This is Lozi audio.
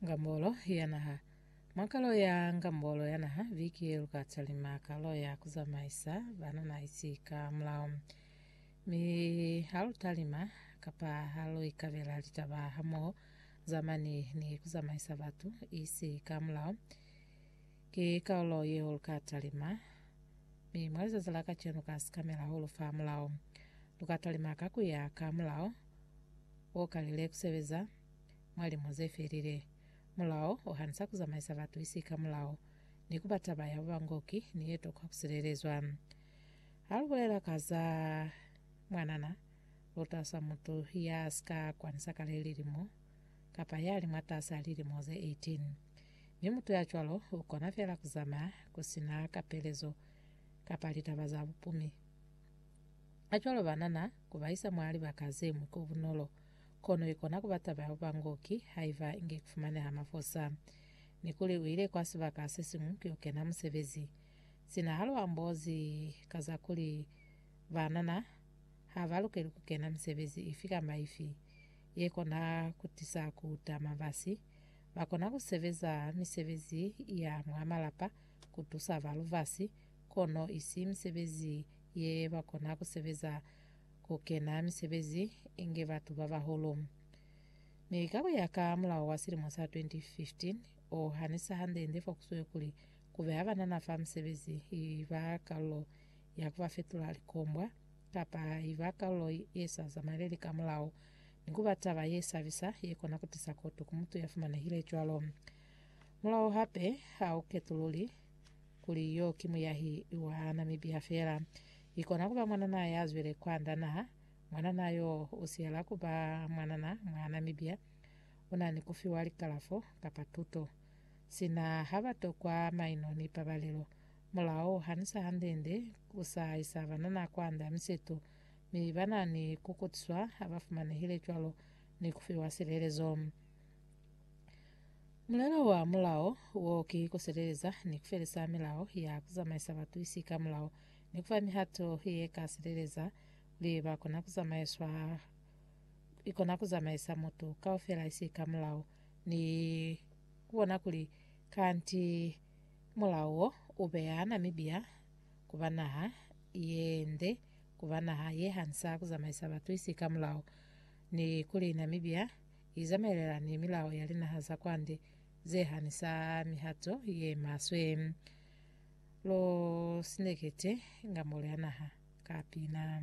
Ngambolo ya Naha Mwa kalo ya Ngambolo ya Naha viki ye lu ka talima kalo ya ku zamaisa banana isi ka mulao. Mi ha lu talima kapa ha lu ikabela litaba hamoho zamani ni ku zamaisa batu isi ka mulao, ki kaolo yeo lu ka talima. Mi mwa lizazi la kacenu ka sikamela ho lu fa mulao. Lu ka talima ka ku ya ka mulao. o kalile ku sebeza mwa limo ze felile. Mulao o hanisa ku zamaisa batu isi ka mulao, ni ku ba taba ya bubangoki ni ye tokwa ku silelezwa. Ha lu bulela ka za mwanana, lu tausa mutu ya si ka kwanisa kale lilimo, kapa ya li mwataas'a lilimo ze 18. Mi mutu ya cwalo u kona fela ku zamaya ku si na kapelezo kapa litaba za bupumi. Kacwalo ba nana ku ba isa mwa libaka ze ñwi ko bunolo, kono i kona ku ba taba ya ku ba ngoki haiba inge ku fumaneha mafosa. Ni kuli u ile kwa sibaka se siñwi ku yo kena musebezi. Sina ha lu ambozi ka za kuli ba nana ha ba lukeli ku kena misebezi ifi kamba ifi ye kona ku tisa ku tama basi, ba kona ku sebeza misebezi ya mwa malapa ku tusa ba lubasi, kono isi misebezi ye ba kona ku sebeza ku kena misebezi inge batu ba bahulu. Mi ka ku ya ka mulao wa silimo sa 2015, o hanisa hande-nde fo ku swe kuli ku beha banana fa misebezi i ba kalulo ya ku ba fetula likombwa kapa i ba kalulo ye sa zamaeleli ka mulao, ni ku ba taba ye sabisa ye kona ku tisa kotu ku mutu ya fumanehile cwalo. Mulao hape ha u ketululi kuli yo ki muyahi wa na mibiha fela. I kona kuba mwanana ya zwile kwanda naha. Mwanana yo u siyela kuba mwanana mwa na mibiha. U na ni kufiwa likalafo kapa tuto. Sina ha ba tokwa maino ni pabalelo. Mulao hanisa hande-nde u sa isa banana kwanda miseto, mi ba na ni kukutiswa ha ba fumanehile cwalo ni kufiwa silelezo. Mulelo wa mulao wo ki kusileleza ni kufelisa milao ya kuzamaisa batuisi ka mulao ni kufa mihato ye ka sileleza kuli ba kona kuzamaiswa ikona kuzamaisa mutu kaufela isi ka mulao ni kubona kuli kanti mulao wo ubeya Namibia kuba naha yende kuba naha ye hanisa kuzamaisa batuisi ka mulao ni kuli Namibia i zamaelana ni milao ya linaha za kwande ze hanisa mihato ye maswe. Lo sinekete nga mole a naha ka pina.